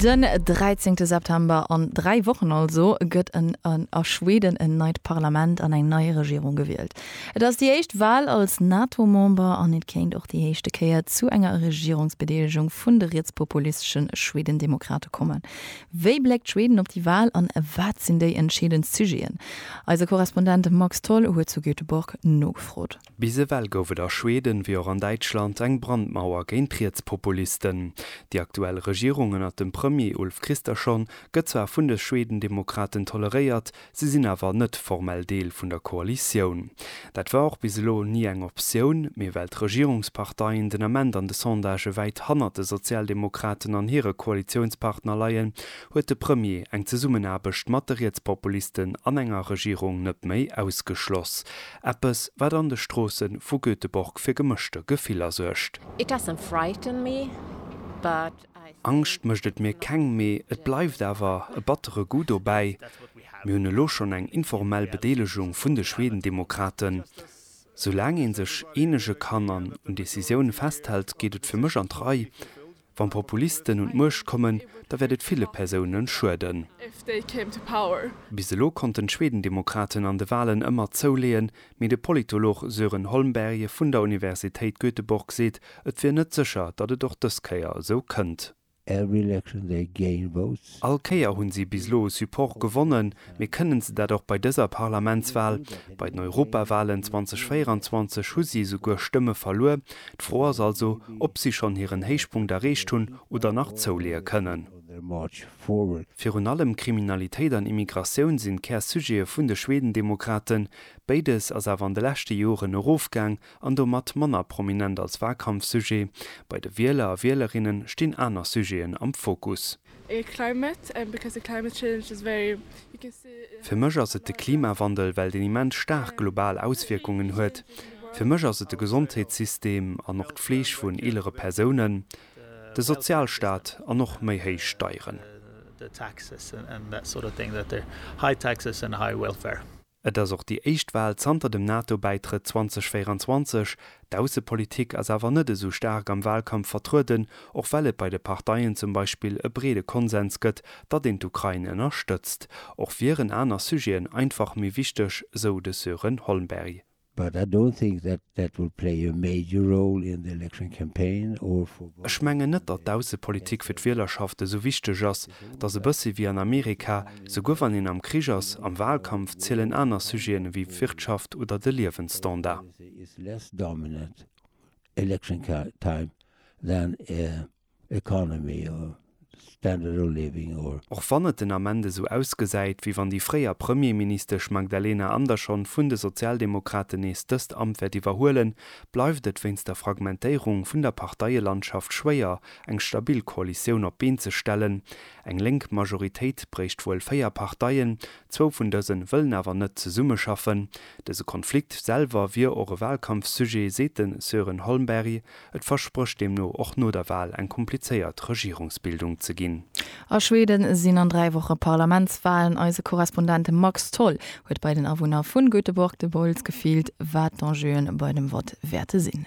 Den 13 September, an 3 Wochen also, gëtt en a Schweden en neit Parlament an eng nei Regierung gewielt. Et ass déi éischt Wal als NATO-Member an et kéint och déi éischte Kéier zu enger Regierungsbedeelegung vun de rietspopulistesche Schwedendemokrate kommen. Wéi bléckt Schweden op déi Wal an wat sinn déi entscheedend Sujeten? Eise Korrespondent Max Tholl huet zu Göteborg nogefrot. Bis ewell gouf et a Schweden, wéi och an Däitschland, eng Brandmauer géint Rietspopulisten. Déi aktuell Regierung ënnert dem Premier Ulf Kristersson gëtt zwar vun de Schwedendemokraten toleréiert, si sinn awer net formell Deel vun der Koalitioun. Dat war och bis elo ni eng Optioun, mee well d'Regierungsparteien den Ament an de Sondagë wäit hannert de Sozialdemokraten an hire Koalitiounspartner leien, huet de Premier eng Zesummenaarbecht mat de Rietspopulisten an enger Regierung net méi ausgeschloss. Eppes, wat an de Stroosse vu Göteborg fir gemëschte Gefiller suergt. It doesn't frighten me, but I think. Angscht mécht et mir keng, mee et bleift awer e battere Goût dobäi. Mir hunn elo schonn eng informell Bedeelegung vun de Schwedendemokraten. Soulaang ee sech eenege kann an un Decisioune festhält, geet et fir mech an d'Rei. Wann Populisten un d'Muecht kommen, da wäert et ville Persounen schueden. Bis elo konnten d'Schwedendemokraten an de Walen ëmmer zouleeën, mee de Politolog Sören Holmberg vun der Universitéit Göteborg seet, et wier net sécher, datt et och dës Kéier esou kënnt. All Kéier hunn si bis elo Support gewonnen, mee kënnen se dat och bei dëser Parlamentswal? Bei den Europawalen 2024 hu si esouguer Stëmme verluer. D'Fro ass also, ob si schonn hiren Héichpunkt erreecht hunn oder nach zouleeë kënnen. Virun allem Kriminalitéit an Immigratioun sinn d'Kär-Sujete vun de Schwedendemokraten. Béides ass awer an de leschte Joren erofgaang, an domat manner prominent als Wahlkampfsujet, bei de Wieler a Wielerinnen stinn aner Sujeten am Fokus. Fir mech ass et de Klimawandel, well deen immens staark global Auswierkungen huet. Fir mech ass et de Gesondheetssystem an och d'Fleeg vun eelere Persounen, de Sozialstaat an och méi héich Steieren. Et ass och déi éischt Wal zanter dem NATO-Bäitrëtt 2024. D'Aussepolitik ass awer net esou staark am Walkampf vertrueden, och well et bei de Parteien zum Beispill e breede Konsens gëtt, datt een d'Ukrain ënnerstëtzt. Och wieren aner Sujeten einfach méi wichteg, sou de Sören Holmberg. But I don't think that that will play a major role in the election campaign or for voters. Ech mengen net, datt d'Aussepolitik fir d'Wielerschaft esou wichteg ass. Et ass e bëssi wéi an Amerika, souguer wann een am Krich ass, am Wahlkampf zielen aner Sujeten ewéi d'Wirtschaft oder de Liewensstandard. It's less dominant election time than economy or standard of living or. Och wann et den Ament esou ausgesäit, wéi wann déi fréier Premierministesch Magdalena Andersson vun de Sozialdemokraten nees dëst Amt wäert iwwerhuelen, bleift et wéinst der Fragmentéierung vun der Parteielandschaft schwéier, eng stabil Koalitioun op d'Been ze stellen. Eng lénk Majoritéit bréicht wuel véier Parteien, zwou vun dëse wëllen awer net zesummeschaffen. Dëse Konflikt selwer wier och e Walkampfsujet, seet de Sören Holmberg. Et versprécht deemno och no der Wal eng komplizéiert Regierungsbildung ze ginn. A Schweden sinn an 3 Woche Parlamentswalen. Eise Korrespondent Max Tholl huet bei den Awunner vun Göteborg de Bols gefillt, wat d'Enjeuen bei dem Vott wäerte sinn.